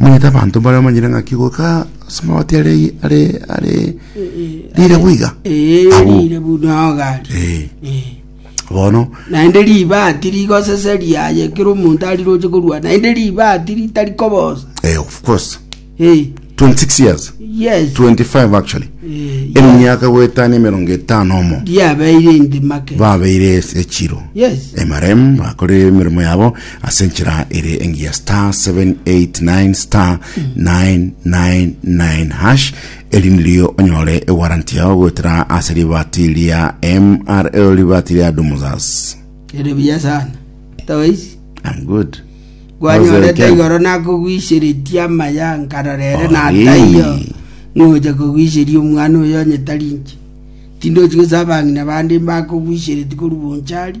omanyete abanto mbare bamanyire ng'aki goika ase amabati are are are rire boiga Abwo. erire buna ogari Eh, Eh. bono naende ribati rigoseseria aye kera omonto ari roche korwa naende ribati ritari kobosa eh, of course Eh, 26 years yes 25 actually Eh, yes. emiaka goetana emerongo etano omo riabeire inde make babeire echiro yes emaremu bakore emirimo yabo ase enchera ere engiya star 789 star 999 hash eri nirio onyore ewaranti yao goetera ase ribati ria mrl ribati ria dumuzas Ere buya sana. Toisi. I'm good gwanyorete igoro nakogwisheretie amaya nkarorere nataiyo Orini. ngocha kogwisheria omwana oyo onyetarinche tindochi gose abang'ina bande mbakogwisheretie korwa bonchari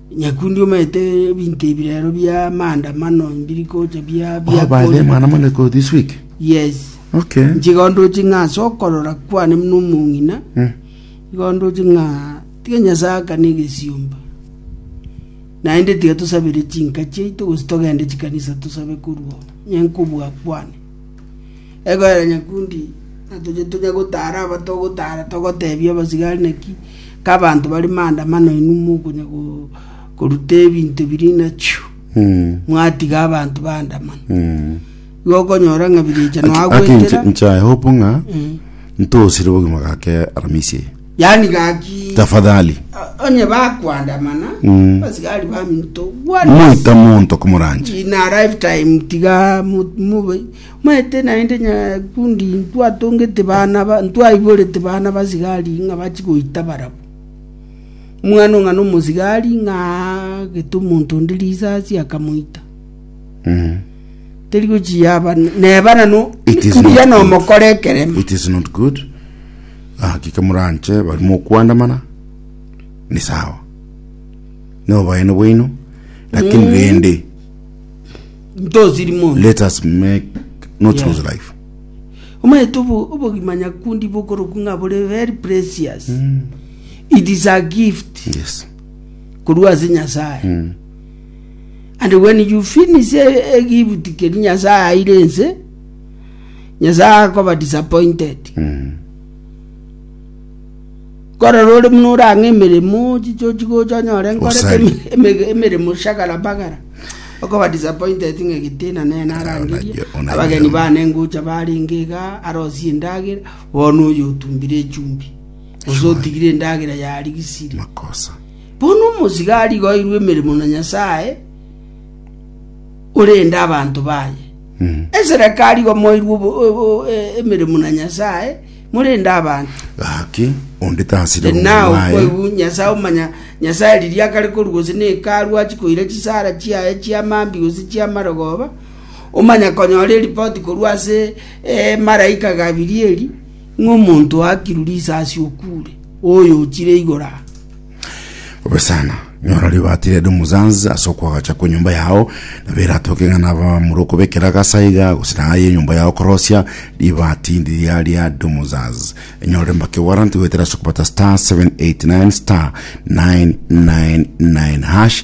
Nyakundi omanyete ebinto ebi rero bia maandamano mbiri gocha bia Oh, bia by the way, mwana moneko this week. yes Okay. nchiga ondoche ng'a ase okorora kwane buna omong'ina Mm. iga ondoche ng'a tiga nyasae akane egesiomba naende tiga tosabere chinka chiaito gose togende chikanisa tosabe korwa onye nkobua kwane Egoera nyakundi na toche tonya gotara aba togotara togotebia abasigari naki kabanto bari maandamano inwe mokonya go- koruta ebinto biri nachiu Mm. mwatiga abanto baandamana Mm. igo okonyora ng'a birecha Aki- aki nche- nagwetera nchae hope ng'a Mm. ntosire obogima gake aramisi eye yaani gaki tafadhali o- onye bakwandamana Mm. abasigari baminto moita monto komoranche in a lifetime tiga mu- mube Maete naende nyakundi ntwatongete bana, ntwaiborete bana basigari ng'a bachi goita barabwo. Omwana ong'ana omosigari ng'a aagete omonto onde risasi akamoita. Teri gochi yaba neba nano It is not mbuya good. nomokora ekeremo. it is not good hakika muranche bari mokwandamana ni sawa noboene bwaino lakini rende ntosiri mono. Let us make not yeah. lose life. Omaete obogima nyakundi bokoroku ng'a bore very precious. Mm. It is a gift. Yes. Korwa ase Nyasaye. Mm. And when you finish a, a gift keri Nyasaye aire ense, Nyasaye akoba disappointed. Mm. Nkorora ore buna orang'e emeremo chichochi gocha onyore nkorete Osari. eme- eme- emeremo shagara bagara okoba disappointed ng'a getina nere narangeria Onaiyo, onaiyo. abageni bane ngocha barenge iga arosie endagera bono oyo otumbire echumbi gose otigire endagera yarigisire makosa bono omosiga arigoirwe emeremo na nyasaye orende abanto baye eserekari igo moirwe obo- obo- e- emeremo na nyasaye Morende abanto. Gaki, onde tasira And omonwa now, aye. koigwa Nyasae omanya, Nyasae riria akare korwa gose ne Hekalu achi koira chisara chiaye chia mambi gose chia marogoba, omanya konyora eripoti korwa ase eh, maraika Gabirieli, ng'a omonto oakirwe risasi okuure, oyo ochire igoro aa. Bobe sana, nyora ribaati rede omosansi ase okwagacha kwenyomba yao, na beratoke ng'a nabamura okobekera agasa iga gose na aye enyomba yao korosia ribaati ndiria ria domosansi. Enyorere mbake warranty goetera ase okobata star 789 star 999 hash